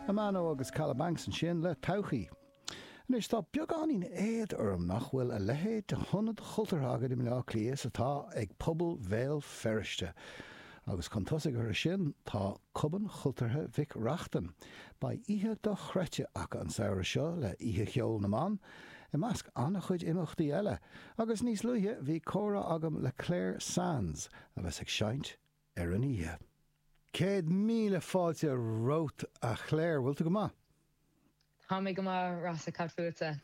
Amano agus Kalabanx ansin le Todhchaí. Anois, tá beagáinín éad orm nach bhfuil a leithéid de hionad chultúrtha againn i mBleá Cliath is atá ag pobal Bhéal Feirste. Agus chun tosaigh orthu sin, tá Cumann Cultúrtha Mhic Reachtain. Beidh oíche dochreidte acu an samhradh seo le Oíche Cheoil na mBan, i measc an-chuid imeachtaí eile. Agus níos luaithe, bhí comhrá agam le Clare Sands, a bheas ag seinnt, ar an oíche. Céad míle fáilte romhat a Chléir, bhfuil tú go maith? Tá mé go maith, Rossa, cad fútsa?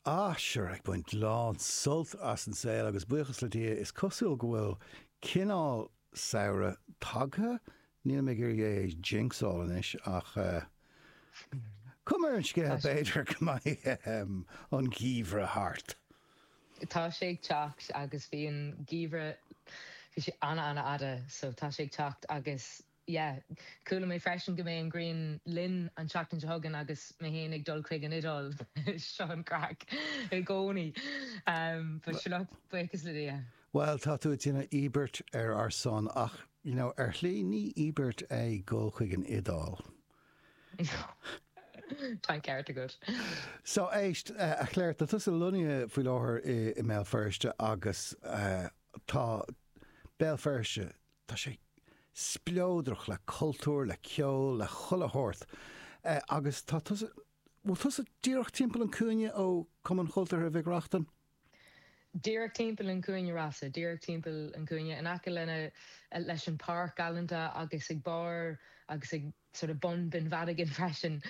Ah, sure, ag baint lán sult as an saol agus buíochas le Dia is cosúil go bhfuil cineál samhradh tagtha, nílim ag iarraidh é a jinxáil anois ach cuma ar an scéal b'fhéidir go mbeidh an geimhreadh thart. tá sé ag teacht agus bhí an geimhreadh, bhí sé ana ana fhada so tá sé ag teacht agus yeah chuala mé freisin go mbeidh an ghrian linn an tseachtain seo chugainn agus mé fhéin ag dul chuig an Iodáil seo an craic i gcónaí but sure look buíochas le Dia. Bhuel tá tú ag déanamh íobairt ar ár son ach you know ar shlí ní íobairt é gabháil chuig an Iodáil. Tá an ceart agat. So éist, a Chléir, tá tusa lonnaithe faoi láthair i mBéal Feirste agus tá Béal Feirste, tá sé spleodrach le cultúr, le ceol, le chuile shórt agus tá tusa, bhfuil tusa díreach timpeall an cúinne ó Cumann Cultúrtha Mhic Reachtain? díreach timpeall an chúinne Rossa, díreach timpeall an chúinne, in aice lena, leis an páirc galanta agus ag barr agus ag sort of bun Bheann Mhadagáin freisin.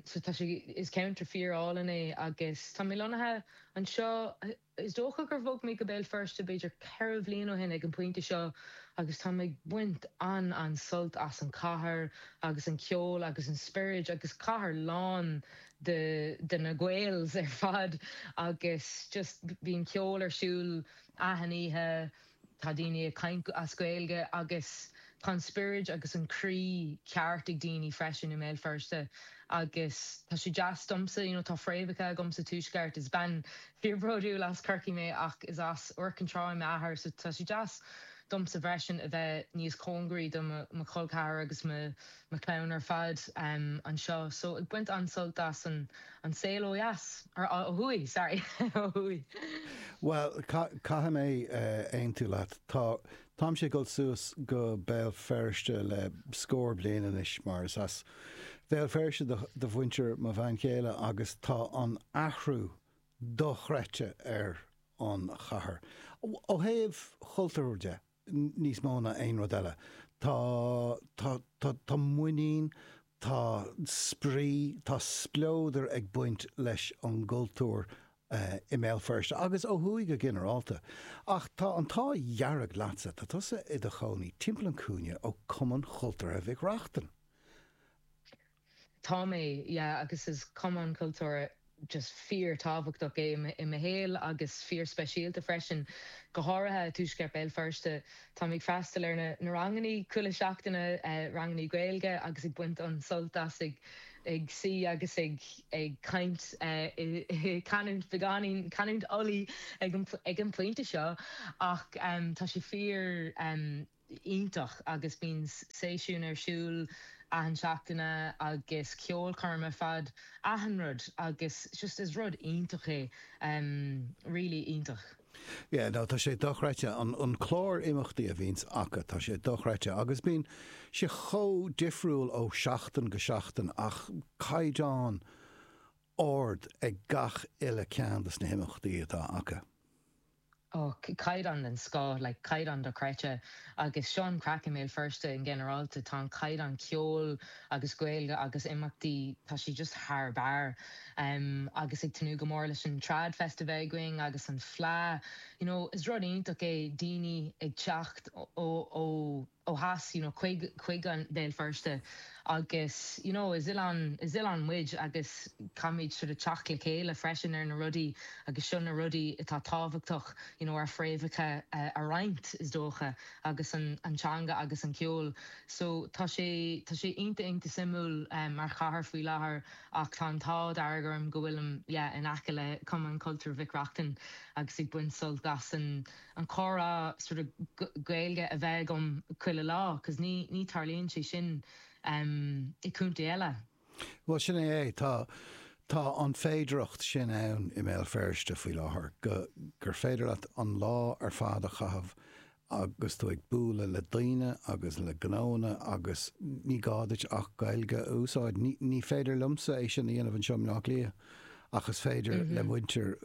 So tá sé, is ceantar fíor álainn é agus tá mé lonnaithe anseo, is dócha gur bhog mé go Béal Feirste b'fhéidir ceithre bhliain ó shin ag an pointe seo agus táim ag baint an, an sult as an cathair agus an ceol agus an spioraid agus cathair lán de de na Gaels ar fad agus just bíonn ceol ar siúl achan oíche, tá daoine ag caint as Gaeilge agus tá an spioraid agus an croí ceart ag daoine freisin i mBéal Feirste agus tá sé deas domsa, you know tá fréamhacha agam sa tuaisceart, is bean fíor bródúil as Corcaigh mé ach is as Iúr Cinn Trá m'athair so tá sé deas domsa freisin a bheith níos cóngaraí do mo chol ceathar agus mo na clann ar fad anseo so ag baint an-sult as an saol ó dheas, or ó thuaidh, sorry, ó thuaidh. Bhuel, caithfidh mé aontú leat. Tá, táimse ag dul suas go Béal Feirste le scór bliain anois mar is as Béal Feirste do mhuintir mo bhean chéile agus tá an athrú dochreidte ar an chathair, ó thaobh chultúir de. níos mó ná aon rud eile tá tá tá tá muinín tá spraoi tá spleodar ag baint leis an gcultúr i mBéal Feirste agus ó thuaidh go ginearálta ach tá an t-ádh dearg leatsa tá tusa i do chónaí timpeall an cúinne ó Cumann Chultúrtha Mhic Reachtain. Tá mé, yeah, agus is cumann cultúrtha just fíor-tábhachtach é i mo shaol agus fíor-speisialta freisin, go háirithe i tuaisceart Béal Feirste. Táim ag freastal ar na rangannaí chuile seachtaine, rangannaí Gaeilge agus ag baint an-sult as ag suí agus ag ag caint i canúint beagáinín, canúint Ulaidh ag an pointe seo ach tá sé fíor, iontach agus bíonn seisiúin ar siúl achan seachtaine agus ceolchoirm ar fad, achan rud agus just is rud iontach é really iontach. Yeah no tá sé dochreidte an clár imeachtaí a bhíonns acu tá sé dochreidte agus bíonn sé chomh difriúil ó seachtain go seachtain ach caighdeán ard ag gach uile ceann dos na himeachtaí atá acu. Ó, caighdeán den scoth, like caighdeán dochreidte agus seo an craic i mBéal Feirste i nginearálta, tá an caighdeán ceoil agus Gaeilge agus imeachtaí, tá sé just thar barr. Em, agus ag tnúth go mór leis an Trad Fest a bheith againn agus an Fleadh, you know, is rud iontach é daoine ag teacht ó, ó, ó, ó theas you know chuig an Béal Feirste agus you know is oileán is oileán muid agus caithfimid sort of teacht le chéile freisin ar na rudaí agus seo na rudaí atá tábhachtach you know ár fréamhacha a roinnt is dócha agus an an teanga agus an ceol so tá sé tá sé iontach iontach suimiúil mar chathair faoi láthair ach tá an t-ádh dearg orm go bhfuilim yeah in aice le Cumann Cultúir Mhic Reachtain agus ag baint sult as an an comhrá sort of Gaeilge a bheith agam chuile lá cos ní ní tarlaíonn sé sin i gcontae eile. Bhuel sin é é, tá tá an féidireacht sin ann i mBéal Feirste faoi láthair go gur féidir leat an lá ar fad a chaitheamh agus tú ag bualadh le daoine agus le gnóanna agus ní gá duit ach Gaeilge a úsáid. Ní ní féidir liomsa é sin a dhéanamh anseo i mBleá Cliath. ach is féidir le muintir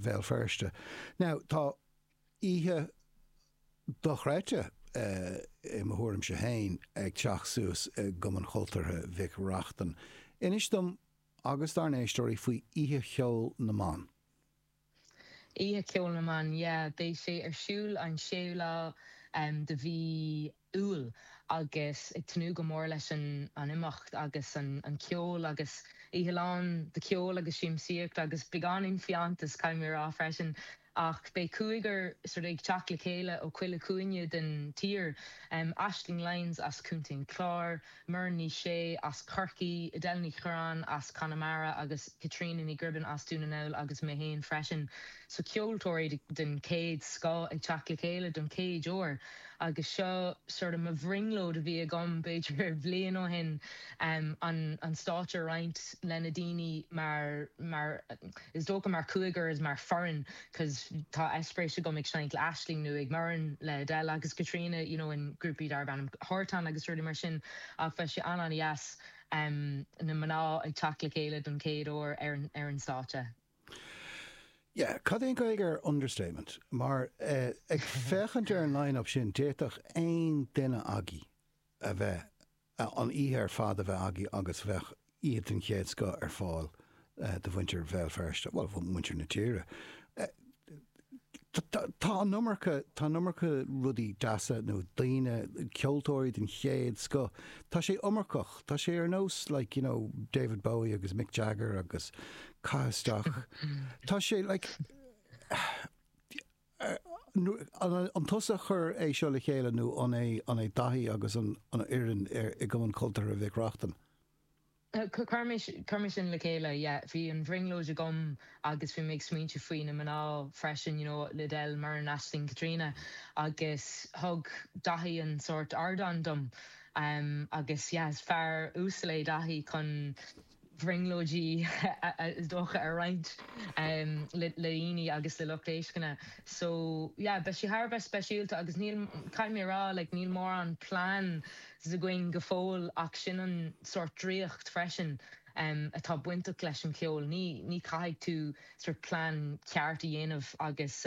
Bhéal Feirste. Now, tá oíche dochreidte, i mo thuairimse féin, ag teacht suas i gCumann Chultúrtha Mhic Reachtain. Inis dom agus dár n-éisteoirí faoi Oíche Cheoil na mBan. Oíche Cheoil na mBan yeah! Beidh sé ar siúl an 6ú lá de mhí Iúil agus ag tnúth go mór leis an imeacht agus an ceol agus oíche lán de cheol agus siamsaíocht agus beagáinín fiántas caithfidh mé a rá freisin ach beidh cúigear sort of ag teacht le chéile ó chuile chúinne den tír Aisling Lyons as Contae an Chláir, Muireann Ní Shé as Corcaigh, Edel Ní Churraoin as Conamara agus Caitríona Ní Ghribín as Dún na nGall agus mé féin freisin so ceoltóirí den chéad scoth ag teacht le chéile don chéad uair agus seo sort of mo bhrionglóid a bhí agam b'fhéidir bliain ó shin an stáitse a roinnt leis na daoine mar mar is dócha mar cúigear is mar foireann. cos tá eispéiris agam ag seinnt le Aisling nó Muireann le Edel agus Caitríona you know in grúpaí darb ainm Hartán agus rudaí mar sin ach beidh sé an-an-dheas em na mná ag teacht le chéile don chéad uair ar an ar an stáitse. Yeah, cad é an Ghaeilge ar understatement? Mar eh ag féachaint ar an line-up sin d'fhéadfadh aon duine agaibh a bheith an oíche ar fad a bheith agaibh agus bheadh oíche den chéad scoth ar fáil do mhuintir Bhéal Feirste, bhuel, mhuintir na tíre. Tá an iomarca, tá an iomarca rudaí deasa nó daoine, ceoltóirí den chéad scoth, tá sé iomarcach, tá sé ar nós like, you know, David Bowie agus Mick Jagger agus caith isteach, tá sé like, An tusa a chuir é seo le chéile nó an é Daithí agus an fhoireann i gCumann Cultúrtha Mhic Reachtain? Chuir mise le chéile, yeah. Bhí an bhrionglóid agam agus bhí mé ag smaointiú faoi na mná freisin, you know, Edel, Muireann, Aisling, Caitríona agus thug Daithí an sórt ardán dom agus yeah, is fear uasal é Daithí chun. brionglóidí is dócha a roinnt le daoine agus le lucht éisteachta so yeah beidh sé thar a bheith speisialta agus níl caithfidh mé a rá like níl mórán pleans againn go fóill ach sin an sórt draíocht freisin atá bainteach leis an cheol ní ní caithfidh tú sort plean ceart a dhéanamh agus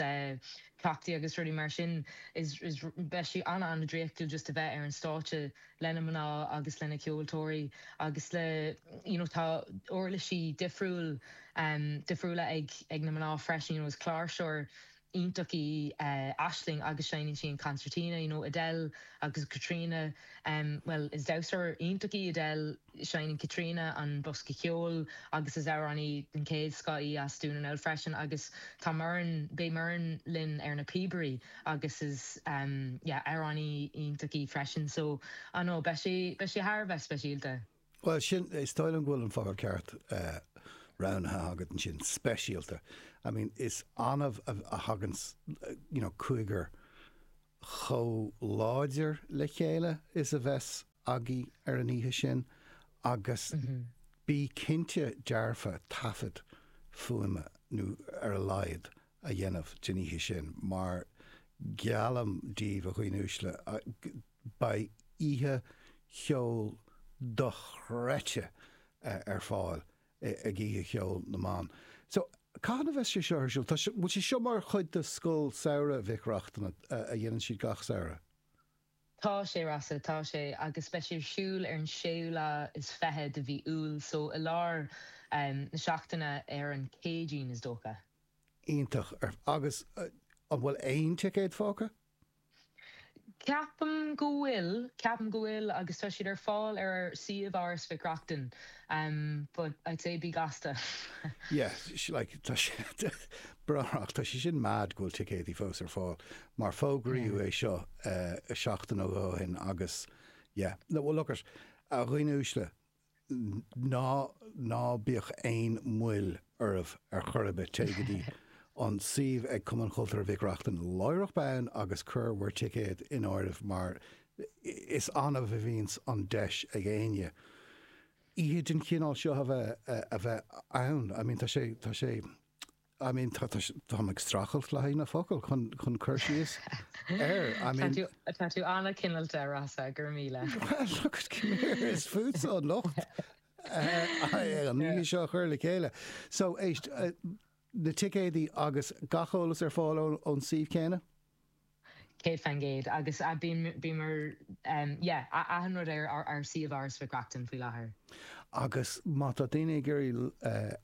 cleachtaí agus rudaí mar sin is is beidh sé ana ana draíochtúil just a bheith ar an stáitse leis na mná agus leis na ceoltóirí agus le you know tá uirlisí difriúil difriúla ag ag na mná freisin you know is cláirseoir iontach í Aisling agus seinneann sí an concertina you know Edel agus Caitríona bhuel is damhsóir iontach í Edel Seineann Caitríona an bosca ceoil agus is amhránaí den chéad scoth í as Dún na nGall freisin agus tá Muireann, beidh Muireann linn ar na píobaí agus is yeah amhránaí iontach í freisin so I don't know beidh sé, beidh sé thar a bheith speisialta. Bhuel sin, is dóigh liom go bhfuil an focal ceart roghnaithe agat ansin, speisialta. I mean is annamh a thagann you know cúigear chomh láidir le chéile is a bheas, agaibh ar an oíche sin agus bí cinnte dearfa taifead fuaime, nó ar a laghad, a dhéanamh den oíche sin mar geallaim díbh a dhaoine uaisle beidh oíche cheoil dochreidte ar fáil ag Oíche Cheoil na mBan. So, cathain a bheas sé seo ar siúl? Tá sé, bhfuil sé seo mar chuid de Scoil Samhraidh Mhic Reachtain a dhéanann siad gach samhradh? Tá sé Rossa, tá sé, agus beidh sé ar siúl ar an séú lá is fiche de mhí Iúil, so i lár na seachtaine ar an Céadaoin is dócha. Iontach, agus an bhfuil aon ticéad fágtha? Ceapaim go bhfuil, ceapaim go bhfuil, agus tá siad ar fáil ar ár suíomh Áras Mhic Reachtain, but I'd say bí gasta. Yeah, like, tá sé, b'fhéidir, tá sé sin mad go bhfuil ticéadaí fós ar fáil, mar fógraíodh é seo seachtain ó shin agus yeah, no well look it, a dhaoine uaisle, ná, ná bíodh aon mhoill oraibh ar chor ar bith, téigh go dtí an suíomh ag Cumann Cultúrtha Mhic Reachtain láithreach bonn agus cuir bhur dticéad in áirithe mar is annamh a bhíonns an deis ag éinne oíche den chineál seo a bheith, a bheith ann, I mean tá sé, tá sé. I mean tá tá mé ag streachailt le haghaidh na focail chun chun cur síos air I mean. Tá tú tá tú an-chineálta Rossa, go raibh míle. Well look at come here is ortsa an locht an oíche seo a chur le chéile. So éist na ticéadaí agus gach eolas ar fáil ón suíomh céanna? Céad faoin gcéad. Agus bíomar, yeah, achan rud ar ár suíomh Áras Mhic Reachtain faoi láthair. Agus má tá daoine ag iarraidh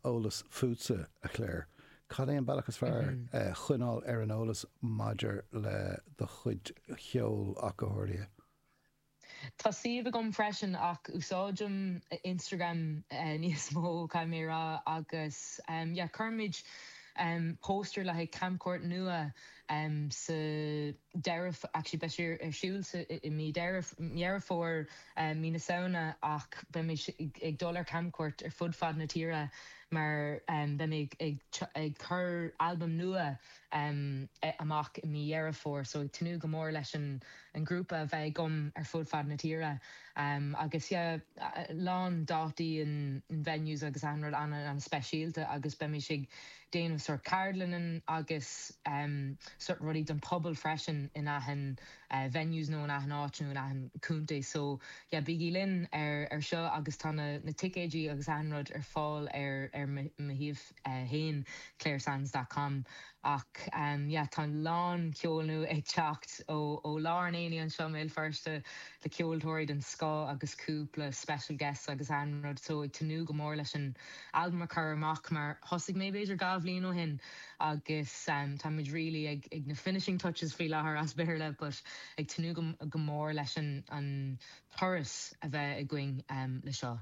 eolas fútsa, a Chláir, cad é an bealach is fearr choinneáil ar an eolas maidir le do chuid ceoil ach go háirithe? Tá suíomh agam freisin ach úsáidim Instagram níos mó caithfidh mé a rá agus yeah cuirfimid póstaer le haghaidh camchuairt nua sa deireadh actually beidh sé ar siúl sa i mí Deireadh Dheireadh Fómhair mí na Samhna ach beimid ag dul ar camchuairt ar fud fad na tíre mar beidh mé ag ag cur albam nua em, eh, amach i mí Dheireadh Fómhair so ag tnúth go mór leis an, an grúpa a bheith agam ar fud fad na tíre. Em, agus yeah, a lán dátaí in, in venues agus achan rud ana, ana speisialta agus beimis ag déanamh sórt ceardlanna agus em, sórt rudaí don pobal freisin in achan eh, venues nó in achan áit nó in achan contae so yeah, bígí linn ar, ar seo agus tá na, na ticéidí agus achan rud ar fáil ar, ar mo, mo shuíomh. 1, claresands dot com Ach yeah tá a lán ceoil nua ag teacht ó lár an aonaigh anseo i mBéal Feirste le ceoltóirí den scoth agus cúpla special guests agus achan rud so ag tnúth go mór leis an albam a chur amach mar thosaigh mé b'fhéidir dhá bhliain ó shin agus tá muid really ag na finishing touches faoi láthair as Béarla but ag tnúth go mór leis an turas a bheith againn le seo.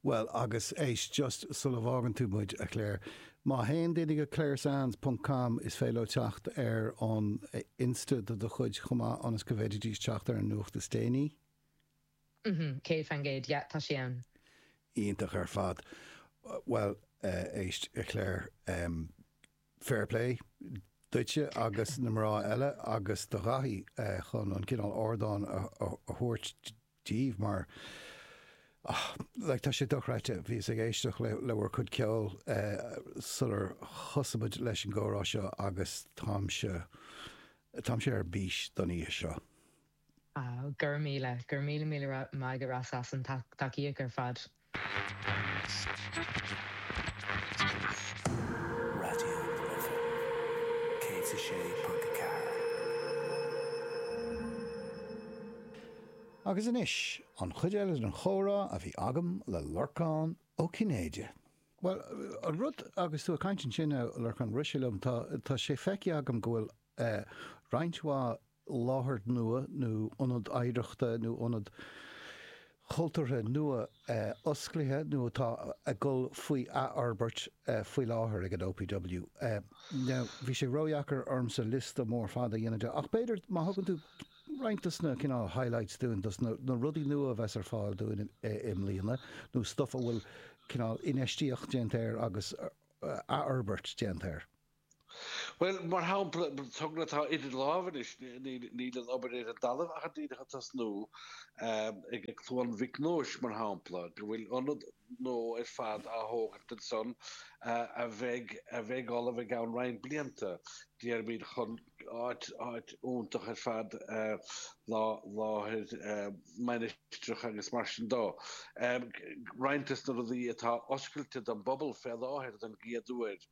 Bhuel, agus éist, just sula bhfágann tú muid, a Chláir, má théann daoine go claresands ponc com is féidir leo teacht ar an insta de do chuid chomh maith ionas go bhféididís teacht ar an nuacht is déanaí. Mm-hmm, céad faoin gcéad, yeah, tá sí ann. Iontach ar fad. Bhuel, éist, a Chláir, fair play duitse agus na mná eile agus do Dhaithí chun an cineál ardáin a thabhairt daoibh mar, ah, like, tá sé dochreidte, bhíos ag éisteach le, le bhur cuid ceoil eh sular thosaigh muid leis an gcomhrá seo agus táimse, táimse ar bís don oíche seo. Ah, go raibh míle, go raibh míle míle maith agat Ross as an tacaíocht ar fad. Raidió na Life 106.4. Agus anois, an chuid eile den chomhrá a bhí agam le Lorcán Ó Cinnéide. Bhuel, an rud agus tú ag caint ansin, a Lorcán, rith sé liom, tá sé feicthe agam go bhfuil roinnt mhaith láthair nua nó ionad oidhreachta nó ionad cultúrtha nua osclaithe nó atá ag dul faoi athfhorbairt faoi láthair ag an OPW. Now, bhí sé ródheacair ormsa liosta mór fada a dhéanamh de, ach b'fhéidir má thugann tú roinnt dos na cineál highlights dúinn, dos na rudaí nua a bheas ar fáil dúinn i mbliana nó stuff a bhfuil cineál infheistíocht déanta air agus athfhorbairt déanta air. Bhuel, mar shampla, togra atá idir lámha anois, níl an obair ar an dtalamh ach díreach ag tosnú, ag Cluain Mhic Nóis mar shampla, go bhfuil ionad nua ar fad á thógaint ansan a bheidh ullamh i gceann roinnt blianta, déarfaimid, chun áit iontach ar fad láthair mainistreach agus mar sin dó. Roinnt des na rudaí atá oscailte don bpobal fé láthair don gcéad uair,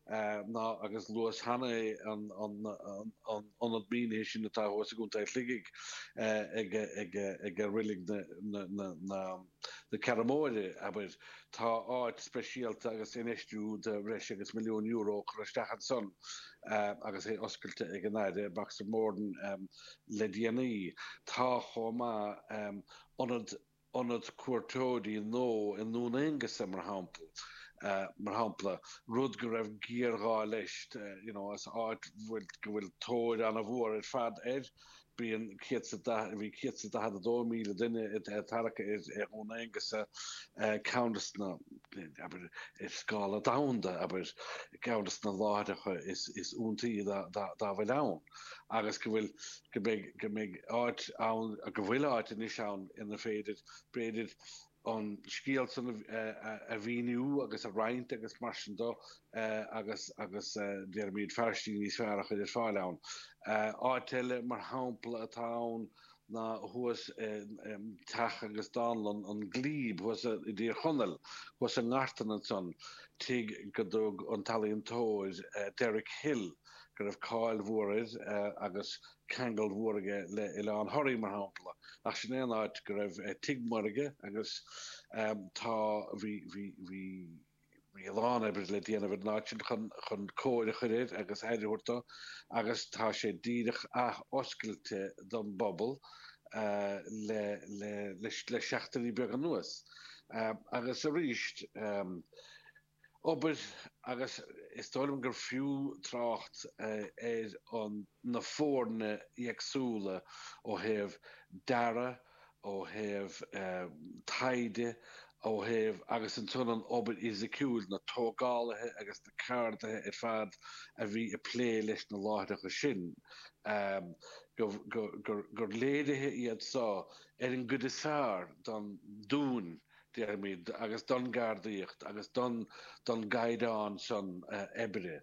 ná agus luas cheana é an ionad mínithe sin atá thuas i gContae Shligigh ag reilig na Ceathrún Móire, abair. Tá áit speisialta agus infheistiú de bhreis agus milliún euro curtha isteach ansan agus é oscailte ag an Aire Boxer Moran le déanaí. Tá chomh maith ionad ionad cuairteoirí nó i nDún Aonghusa mar shampla, mar shampla, rud go raibh géarghá leis, you know, as áit go bhfuil tóir an-mhór ar fad air, bíonn 140, bhí 142,000 duine ag tarrac ar Dhún Aonghusa, ceann des na, abair, ar scála domhanda, abair, ceann des na láithreacha is iontaí dá bhfuil ann. agus go bhfuil, go mbeidh, go mbeidh áit ann, go bhfuil áit anois ann ina féidir, b'fhéidir, an scéal san a mhíniú agus a roinnt agus mar sin do, agus, agus déarfaimid fáiltiú níos fearr a chur ar fáil ann. Áit eile, mar shampla, atá ann ná thuas teach agus dánlann an Glebe thuas i dTír Chonaill, thuas i nGartan ansan, tigh go dtug an t-ealaíontóir Derek Hill, go raibh cáil mhór air agus ceangal mhór aige le Oileán Thoraí mar shampla, ach sin é an áit go raibh tigh mór aige agus tá bhí bhí bhí bhí a lán oibre le déanamh ar an áit sin chun chun cóir a chur air agus aire a thabhairt dó agus tá sé díreach ath-oscailte don bpobal le le le seachtainí beaga anuas agus arís obair agus is dóigh liom gur fiú trácht ar an na foirne éagsúla ó thaobh dearadh, ó thaobh taighde, ó thaobh agus ansan an obair fhisiciúil, na tógálaithe agus na ceardaithe ar fad a bhí ag plé leis na láithreacha sin, gur léiriú iad seo ar an gcuid is fearr don dúthracht. déarfaimid, agus don gceardaíocht agus don don gcaighdeán san oibre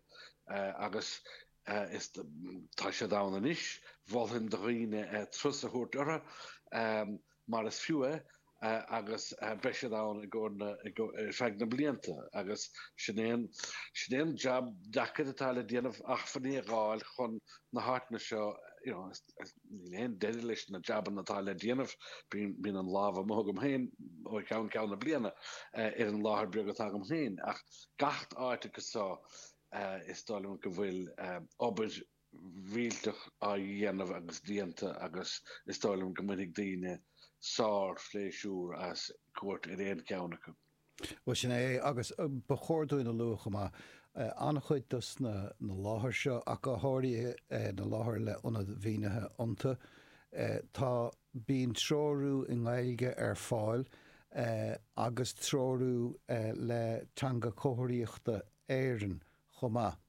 agus is tá siad ann anois. Mholfainn do dhaoine turas a thabhairt orthu mar is fiú é agus beidh siad ann i gcomhair na i go ar feadh na blianta agus sin é an sin é an jab deacair atá le déanamh achmhainní a dh'fháil chun na háiteanna seo you know Níl aon deireadh leis na jabanna atá le déanamh. Bíonn an lámh amuigh agam féin ó cheann ceann na bliana ar an láthair beag atá agam féin, ach gach áit agus só is dóigh liom go bhfuil obair mhaith á dhéanamh agus déanta agus is dóigh liom go mbainfidh daoine sár-phléisiúr as cuairt ar aon cheann acu. Bhuel, sin é é, agus ba chóir dúinn a lua chomh maith, an-chuid dos na láthair seo, ach go háirithe na láthair le ionad mínithe iontu, tá, bíonn treorú i nGaeilge ar fáil agus treorú le Teanga Chomharthaíochta Éireann chomh maith.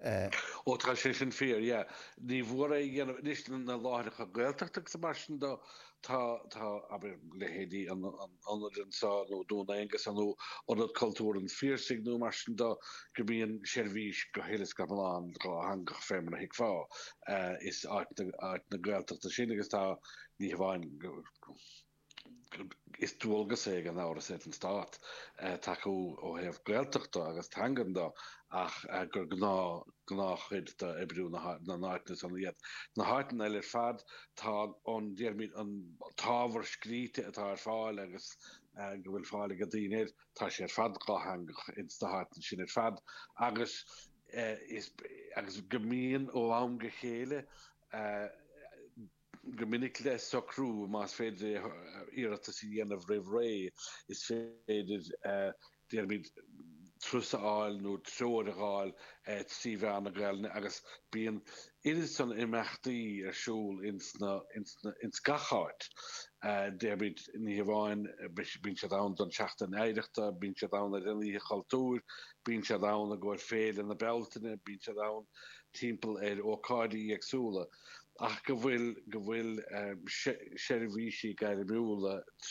Eh. Ó tá sé sin fíor, yeah. Ní nach ionadh anois na láithreacha Gaeltachta agus mar sin de, tá, tá, abair, leithéidí an ionaid anseo nó Dún Aonghasa nó Ionad Cultúir an Phiarsaigh nó mar sin de go mbíonn seirbhís go huile is go hiomlán dhátheangach fé mar a thuigfeá. Eh, is áiteanna, áiteanna Gaeltachta san agus tá, ní hamháin go. Is dualgas é gan amhras ar an Stát tacú ó thaobh Gaeltachta agus teangan de ach gur gnáth gnáth chuid d'oibriú na n-áiteanna san iad. Na háiteanna eile ar fad tá an, déarfaimid, an t-ábhar scríte atá ar fáil agus go bhfuil fáil ag daoine air tá sé ar fad dhátheangach ins na háiteanna sin ar fad agus is agus go mbíonn ó am go chéile go minic le socrú más féidir iarratas a dhéanamh roimh ré, is féidir, déarfaimid, turas a fháil nó treoir a fháil trí mheán na Gaelainne agus bíonn oiread san imeachtaí ar siúl ins gach áit, déarfaimid, ní hamháin, bíonn siad ann don tSeachtain Oidhreachta, bíonn siad ann ar an Oíche Chultúir, bíonn siad ann i gcomhair Féile na Bealtaine, bíonn siad ann timpeall ar ócáidí éagsúla. ach go bhfuil go bhfuil seirbhísí gairmiúla